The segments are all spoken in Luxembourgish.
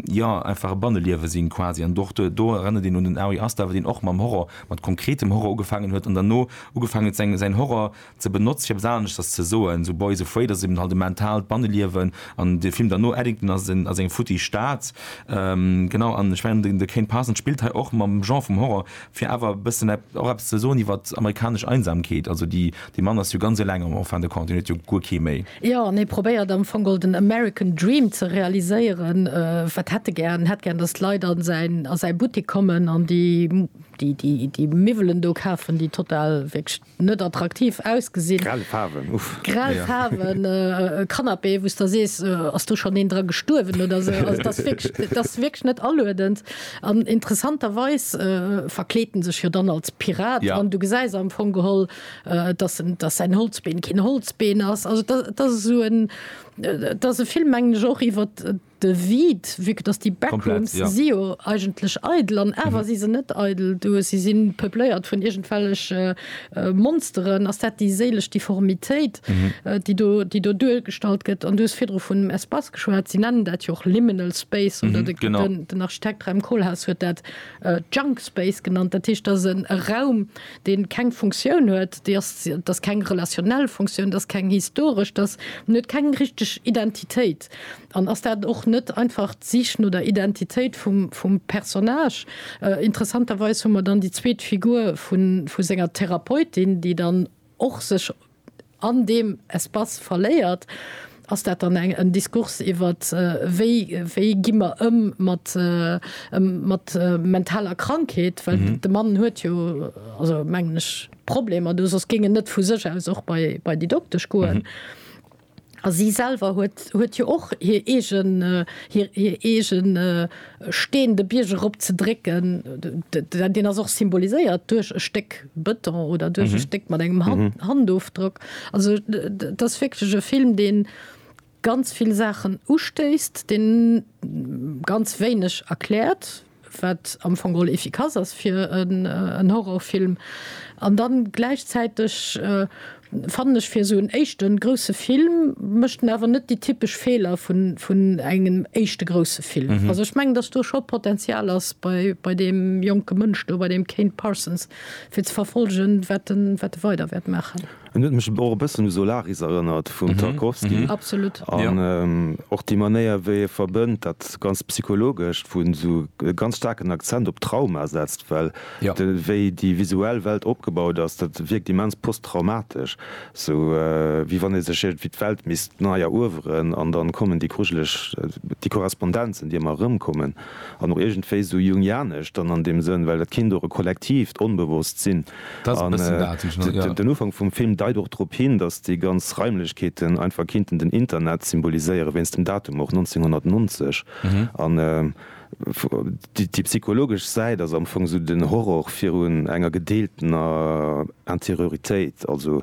jo einfach e Banneliewe sinn quasi an och do erënnert een un den Ari Aster, deen och mam Horror, mat konkretem Horror ugefaangen huet an derno ugefaangen huet seng säin Horror ze benotze fir eppes aneschters ze soen, sou Boys Afraid ass eben halt e mentaalt Banneliewen an de Film derno Eddington ass en ass eng futtig Stad, genau an ech mengen de Kane Parsons spillt hei och mam Genre vum Horror Fir awer e bëssen och eppes ze soen iwwer amerikanesch Einsamkeet, also déi, dee Mann ass jo ganz eleng am en fin de compte, hien huet jo guer kee méi. Jo, an hie probéiert am Fong ol den American Dream ze realiséieren. Wat hätt e gären? En hätt gären, datt d'Leit a säin, a säi Buttik kommen an déi, déi, déi Miwwelen do kafen, déi total, wierklech, net attraktiv ausgesinn. Grell Faarwen, uff. Grell Faarwen, e Canapé wou s der sees, ass do schonn een dra gestuerwen oder sou. Also dat ass wierklech, dat ass wierklech net aluedend. An interessanterweis verkleet en sech jo dann als Pirat an du gesäis am Fong geholl, dass en, dass säin Holzbeen keen Holzbeen ass. Also dat ass esou en, dat ass e Film mengen ech och iwwert, De Vide, vu que dass déi Backrooms si jo eigentlech eidel an awer si se net eidel, du si si peupléiert vun iergendwellege Monsteren, ass dat déi séilesch Difformitéit, déi do déi do duergestallt gëtt? An du hues virdru vun dem Espace geschwat, si nennen dat jo och Liminal Space oder de den Architekt Rem Koolhaas huet dat Junk Space genannt. Dat heescht, dat ass en e Raum, dee keng Funktioun huet, dee ass dat ass keng relationnel Funktioun, dat ass keng historesch, dat ass en huet keng richteg Identitéit. Text? An ass dat och net einfach d'Sich no der Identitéit vum Personnage? Interessanterweis hu mer dann déi zweet Figur vu senger Therapeutin, déi dann och sech an deem Espace verléiert. Ass dat dann en Diskurs iwwer wéi gi mer ëm mat mentaler Krankheet? Well de Mann huet jo, also mengen ech, Problemer do, soss géing en net vu sech aus och bei déi Doktesch goen. A si selwer huet jo och hir eege Steen de Bierg erop ze drécken. Deen ass och symboliséiert duerch e Stéck Bëton oder duerch e Stéck mat engem Handofdrock. Also et ass wierklech e Film, dee ganz vill Saachen ustéisst, dee ganz wéineg erkläert. wat am Fong geholl efficace ass fir en Horrorfilm, an dann gläichzäiteg fannen ech fir esou en éischten grousse Film mécht en awer net déi typesch Feeler vun engem éischte grousse Film. Also ech mengen, datt do scho Potenzial ass bei deem jonke Mënsch do, bei deem Kane Parsons, fir ze verfollegen, wat e weider wäert maachen. En huet mech och e bëssen u Solaris erënnert vum Tarkovsky. Absolut. An och déi Manéier, wéi e verbënnt dat ganz Psychologescht, wou en esou e ganz staarken Akzent op Trauma setzt, well de wéi déi visuell Welt opgebaut ass, dat wierkt immens posttraumatesch, sou wéi wann ee sech iergendwéi d'Welt misst nei erueweren. An dann kommen déi grujeleg, déi Korrespondenzen, déi ëmmer erëmkommen, an och iergendwéi esou jungianesch dann an deem Sënn, well et kinnt och e kollektiivt Onbewosst sinn. Den Ufank vum Film deit och drop hin, datt déi ganz Raimlechkeeten einfach kinnten den Internet symboliséieren, wéinst dem Datum och, 1990. An déi psychologesch Säit ass am Fong esou den Horror virun enger gedeeltener Intérioritéit, also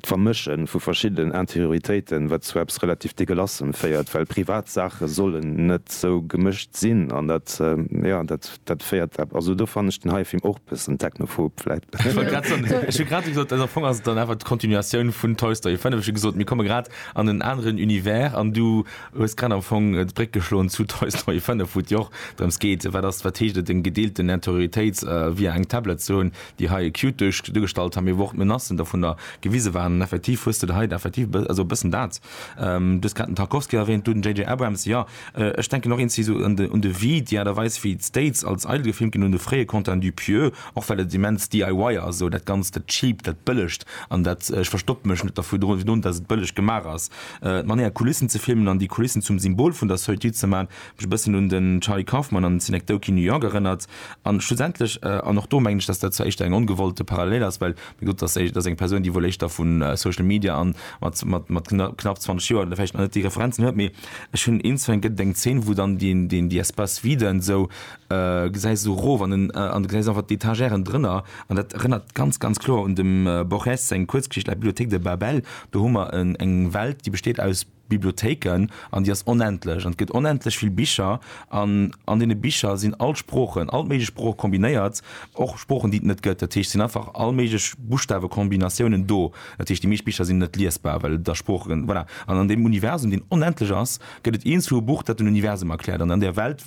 D'Vermësche vu verschiddenen Anterioritéiten, wat zu eppes relativ Degelassem féiert, well privat Saache sollen net esou gemëscht sinn an dat, jo, dat, dat féiert epp, also do fannen ech den hei Film och bëssen technophob vläit. Ech wollt grad soen, ech hu grad gesot, also am Fong ass et dann awer d'Kontinuatioun vun Toy Story 5, ech hu gesot, mir komme grad an en aneren Univers an du hues grad am Fong d'Bréck geschloen zu Toy Story 5, wou et jo och drëms geet, wat ass, wat heescht et, eng gedeelten Anterioritéit via eng Tablet ze hunn, déi hei acute duerch duergestallt han, mee wou och d'Menacen dovunner gewise waren, an effektiv hues de der hei effektiv e, also e bëssen dat, du hues grad den Tarkovsky erwähnt, du den JJ. Abrams, jo, ech denken och inciso un de, un de Vide, déi Aart a Weis wéi d'States als eidel gefilmt ginn, un de fréie Quentin Dupieux, och well et immens DIY ass, esou dat ganzt, dat cheapt, dat bëllegt an dat ech verstoppe mech net dervun, virun dass et bëlleg gemaach ass, d'Manéier Kulissen ze filmen an déi Kulissen zum Symbol vun der Solitude ze man, Mech e bëssen un den Charlie Kaufman an Synecdoche New York erënnert. An schlussendlech, an och do mengen ech, dass dat zwar éischter eng ongewollte Parallel ass, well mir gesot, dass dat ass eng Persoun, déi wuel éischter vu Social Media an mat, mat knapp 20 Joer vläicht nach net déi Referenzen huet, mee ech hunn een, zwee, et gëtt eng Zeen, wou dann deen, deen, déi Espace vide esou gesäis, esou erof an en, an du gesäis einfach d'Etagèren drënner. An dat erënnert ganz, ganz kloer un dem Borges seng Kuerzgeschicht La bibliothèque de Babel. Do hu mer eng Welt, déi besteet aus. Bibliothéiken an déi ass onendlech an et gëtt onendlech vill Bicher an an deene Bicher sinn all d'Sproochen, all d'méiglech Sprooche kombinéiert, och Sproochen déi et net gëtt. Dat heescht, et sinn einfach all méiglech Buschtawekombinatiounen do. Dat heescht, déi meescht Bicher sinn net liesbar, well et a Sprooche, voilà. An an deem Universum, deen onendlech ass, gëtt et eens vu e Buch, dat den Universum erkläert an an där Welt wëlle.